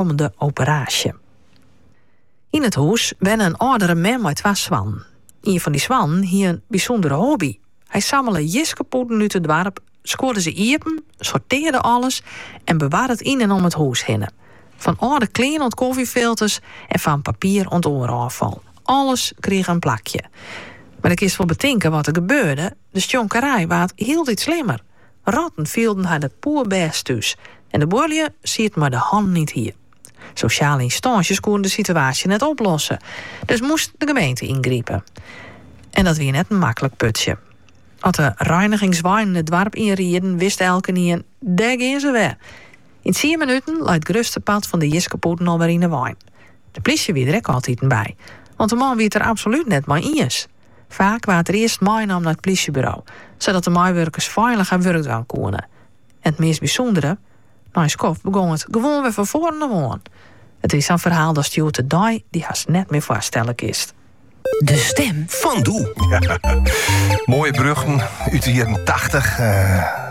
oankommende operaasje. Yn it hûs wenne in âldere mem mei twa soannen. Ien fan dy soannen hie in bysûndere hobby. Hy sammele jiskepûten út it doarp, skuorde se iepen, sortearde alles en bewarde it yn en om it hûs hinne. Fan âlde klean oant kofjefilters en fan papier oant oar ôffal, alles krige in plakje. Mar do kinst wol betinke wat der gebeurde, de stjonkerij waard hieltyd slimmer. Rotten fielden har der poerbêst thús en de buorlju sieten mei de hannen yn it hier. Sosjale ynstânsjes koene de situaasje net oplosse, dus moast de gemeente yngripe. En dat wie net in maklik putsje. As de reinigingsweinen it doarp ynrieden, wist elkenien, dêr gean se wer. Yn tsien minuten lei it grutste part fan de jiskepûten alwer yn 'e wein. De plysje wie der ek altiten by, want de man wie it der absolút net mei iens. Faak waard er earst meinommen nei it plysjeburo, sadat de meiwurkers feilich har wurk dwaan koene. En it meast bysûndere, nei in skoft begong it gewoan wer fan foaren ôf oan. It wie sa'n ferhaal datst hjoed de dei dy hast net mear foarstelle kinst. De stim fan doe. Moaie berjochten út de jierren tachtich.